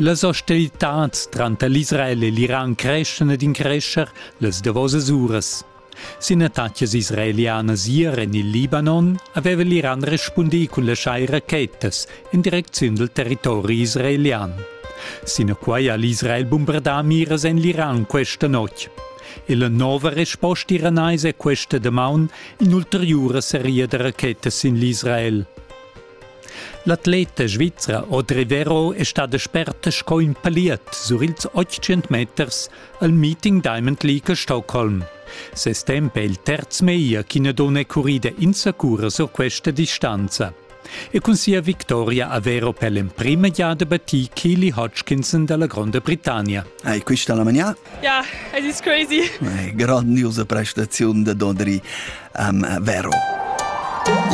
Las hostilitads tranter l'Israel e l'Iran creschan ed increschan las davosas uras. Sin attacas israelianas ier en il Libanon aveva l'Iran respundì cun laschar rachetas en direcziun dal territori israelian. Sinaquai ha l'Israel bombardà miras en l'Iran questa notg. E la nova resposta iranaisa è questa damaun in'ulteriura seria da rachetas sin l'Israel. L'atleta svizra Audrey Vero è stada sperta sco in paliet sur ils 800 meters al Meeting Diamond League a Stockholm. Ses temp è il terz meglier ch'ina donna è currida insacura sur questa distanza. E cun sia victoria a Vero per l'emprima giada battì Keely Hodgkinson da la Gronda Britannia. Hai quista la manià? Ja, it is crazy. Grandiosa prestaziun da Dodri am Vero.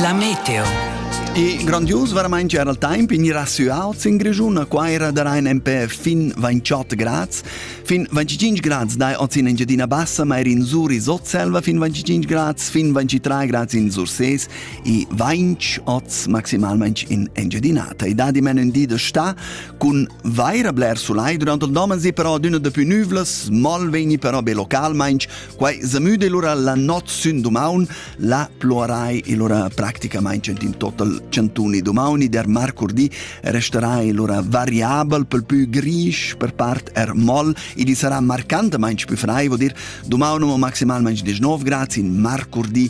La meteo. E grandios veramente era il tempo in ir su Alts in Grigiuna, qua era da Rhein MP fin 28 grads, fin 25 grads dai oz in Engiadina Bassa, ma er in Sur in Sotselva fin 25 grads, fin 23 grads in Surses e 20 oz maximalmente in Engiadina. Tai da di men in di da sta, Cun vaira bler sulai durant il domen si però d'üna da pü nüvlas, mal vegni però be localmainch, quai zamüda lura la not sün dumaun, la pluarai lura practicamaing in total centuni dumauni, der marcurdi resterai lura variabel pel pü grisch, per part er moll, ed i sarà marcantamaing pü frai, vo dir dumaun o maximalmaing 19 grads in marcurdi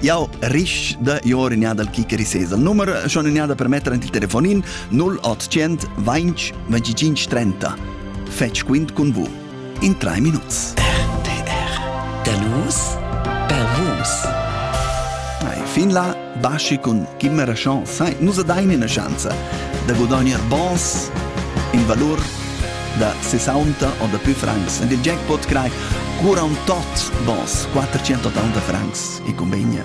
Jau risch da ior in dal kicker sesa. Nummer schon in per mettere il telefonin 0800 20 25 30. Fetch quint con vous. In tre minuts. RTR. Der Luz per Vus. fin là basci con chi me rascion sai, nusa dain una chance da guadagnar bons in valor da 60 o dapü francs. Ed il jackpot crai cura un tot bons 480 francs e convegna.